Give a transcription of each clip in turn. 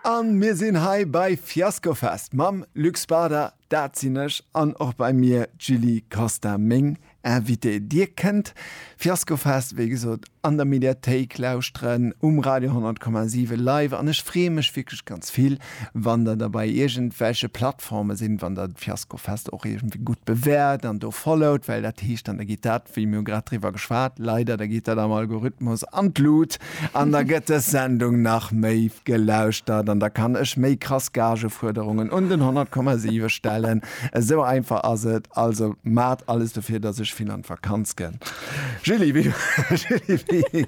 An mir sinn hei bei Fiaskofest mam Luc Spada, dat sinn ech, an och bei mir d'Julie Costa, meng Invitée. Dir kënnt Fiaskofest, wéi gesot, an der Mediathéik lauschteren, um Radio 100,7 live, an ech freeë mech wierklech ganz vill, wann der der bei iergendwelche Plattformen, Plateforme sinn, wann Der d'Fiasko Fest och iergendwéi gutt bewäert an do followt, well dat heescht dann, da geet dat, wéi mir hu grad driwwer geschwat, leider, da geet dat am Algorithmus an d'Lut an da gëtt dës Sendung nach méi gelauschtert an da kann ech méi krass Gagefuerderungen un den 100,7 stellen. Esou einfach ass et. Also maacht alles dofir, dass ech vill an d'Vakanz gënn. Julie, wéi, Julie, wéi,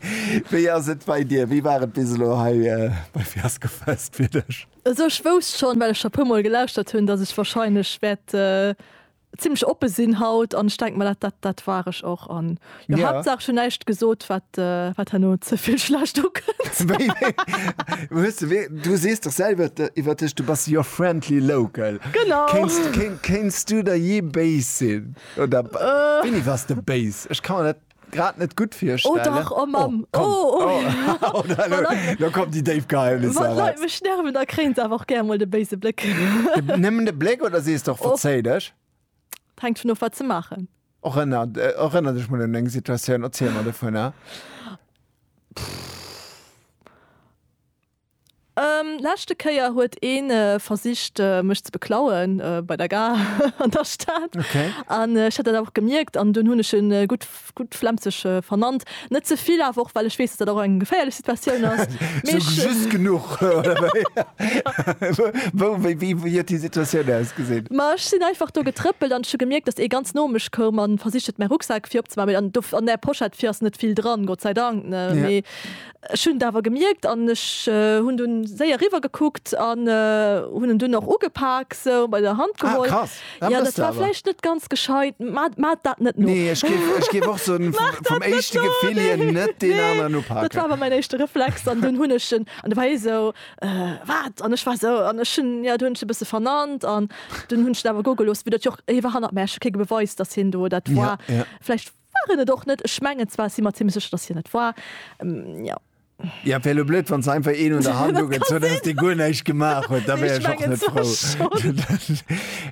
wéi ass et bei dir? Wéi war et bis elo hei bei Fiasko Fest fir dech? Also ech wousst schonn, well ech scho puer mol gelauschtert hunn, datt ech wahrscheinlech wäert zimlech oppe sinn haut an ech denke mer, dat dat war ech och an jo Ja. Haaptsaach ech hunn näischt gesot, wat wat herno ze vill schlecht ukënnt. Wéi, wéi, hues de wéi, du sees dach selwer de iwwer dech, du bass your friendly local. Genau. Kéins, kéins du der jee béis sinn oder wéini waars de béis? Ech ka mer dat. grad net gutt virstellen. Oh dach, oh Mamm, oh, oh. Oh, da, lo, da kommen déi déif Geheimnisser Wann d'Leit eraus. mech nerven, da kréien se awer och gär mol de béise Bléck. De, nëmmen de Bléck oder sees de och, Och. Verzéi dech? Et hänkt vun of, wat se maachen. Erënner, erënner dech mol un eng Situatioun, erziel mer dovunner. Leschte Kéier huet een versicht mech ze beklauen bei der Gare an der Stad an ech hat dat awer och gemierkt an dunn hunn ech en gutt gutt Flemzeg vernannt. Net ze vill awer och well ech weess, datt dat och eng geféierlech Situatioun ass. Mee ech. Sou just genuch oder wéi? Wou, wéi, wéi, wéi huet déi Situatioun ausgesinn? Ma ech sinn einfach do getrëppelt an ech hu gemierkt, datt ee ganz no mech koum an versicht huet mäi Rucksak fir opzemaachen. Mee an do an där Pochette fir ass net vill dran, Gott sei Dank, ne? Mee. Ech hunn et awer gemierkt an ech hunn dunn séier riwwer gekuckt an hunn en dunn och ugepak sou bei der Hand geholl. Ah krass, dat mëss de awer. Jo, dat war vläicht net ganz gescheit. Maat dat net no. Nee, ech géif, ech géif och soen, vum éischte Gefill hier net deen aneren upaken. Dat war awer mäin éischte Reflex an dunn hunn ech en, an da war hie sou, wat? An ech war sou, an ech hunn, jo, du hunn ech e bësse vernannt an dunn hunn ech en awer goe gelooss, vu datt jo och, hie war hannert mär, ech hu kee Beweis, datt hien do dat war. Vläicht. War en et och net. Ech mengen zwar, ech si mer zimlech sécher, datt hien et war. Jo. Ja, wär lo blöd, wann se einfach een un der Hand ugezunn hätt, dee guer näischt gemaach huet. Da wär ech och net frou.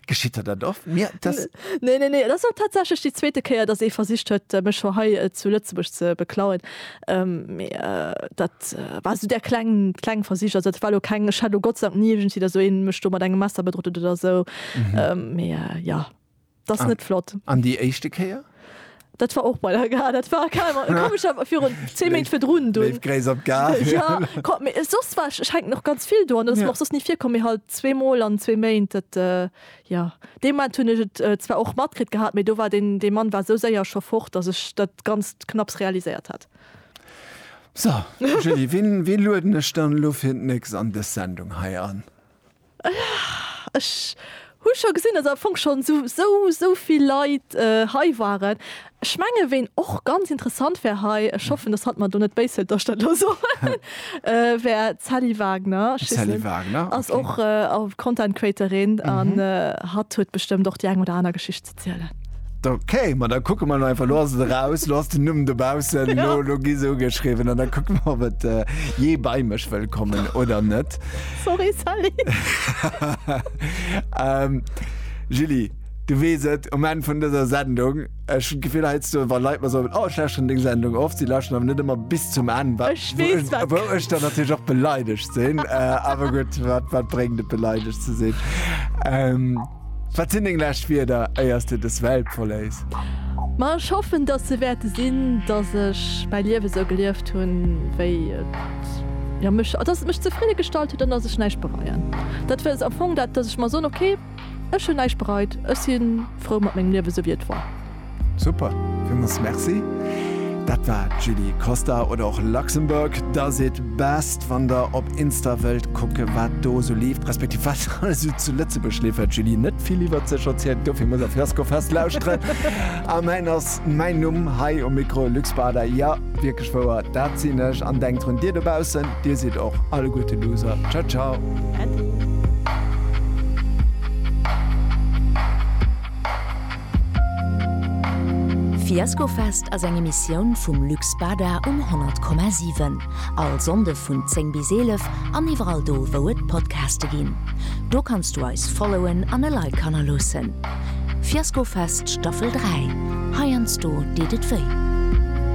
Geschitt der dat oft? Mir, dass. Nee, nee, nee. Et ass och tatsächlech déi zweete Kéier, datt ee versicht huet, mech scho hei zu Lëtzebuerg ze beklauen. Mee dat war esou där kleng, kleng Versich. Also dat war lo keng, ech hat lo Gott sei Dank ni iergendwéi, datt esou ee mech do mat engem Messer bedrot huet oder esou. Mee jo, Dat ass net flott. An déi éischte Kéier? Dat war och bei der Gare. Dat war komescher virun 10 Méint virdrun dunn. Léif Gréiss op d'Gare. Ja, ko, mee soss war, schengt nach ganz vill do an dat ass mer och soss ni virkomm, mee halt zweemol an zwee Méint. Dat, jo, dee Moment hunn ech et zwar och matkritt gehat, mee do war deen, dee Mann war esou séier scho fort, datt ech dat Ganzt knapps realiséiert hat. So, Julie, wien, wien lueden ech dann elo fir d'nächst an dës Sendung hei an? Ech hu scho gesinn, dass am Fong schonn esou esou vill Leit hei waren. Ech menge ween och ganz interessant wär hei, ech hoffen, dass hatt mer do net béis hëlt, dass ech dat elo soen, wär d'Sally Wagner. D'Sally Wagner, ok. Ass och Content Creatorin an hatt huet bestëmmt och déi eng oder aner Geschicht ze. zielen. Ok, ma da kucke mer elo einfach. Elo ass et eraus, elo ass den Numm dobaussen, elo elo gi se ugeschriwwen an da kucke mer, ob et jee bei mech wëll kommen oder net. Sorry Sally. Julie, du weess et, um Enn vun dëser Sendung, ech hunn d'Gefill heiansdo, wa Leit mer soen, oh ech lauschteren deng Sendung oft, si lauschteren awer net ëmmer bis zum Enn, wa wou ech dann natierlech och beleidegt sinn. Awer gutt, wat wat bréngt et beleidegt ze sinn? Wat sinn deng lescht Wierder éier s de dës Welt verléiss? Ma ech hoffen, dass se wäerte sinn, dass ech mäi Liewe sou gelieft hunn, wéi et mech, dass et mech zefridde gestallt huet an dass ech näischt bereien. Dat ass am Fong dat, dass ech mer soen, okay, ech hunn näischt bereit, ech si frou mat mengem Liewe, sou wéi et war. Super, villmols merci. Dat war d'Julie Costa oder och Luxembourg does it best, wann der op Insta wëllt kucke wat do esou leeft, respektiv wat alles esou zu Lëtzebuerg leeft, well d'Julie net vill iwwert sech erzielt, dofir muss der Flaskofest lauschteren. A mäin ass mäin Numm hei um Mikro, Luc Spada, jo, wierklech wouer, dat sinn ech. An denkt drun, dir dobaussen, dir sidd och alleguerte Loser. Ciao ciao. Äddi. Fiaskofest ass eng Emissioun vum Luc Spada um 100,7. All Sonnde vun 10 bis 11 an iwwerall do wou et Podcaste ginn. Do kanns du eis followen an e Like hanner loossen. Fiaskofest Staffel 3, heiansdo deet et wéi.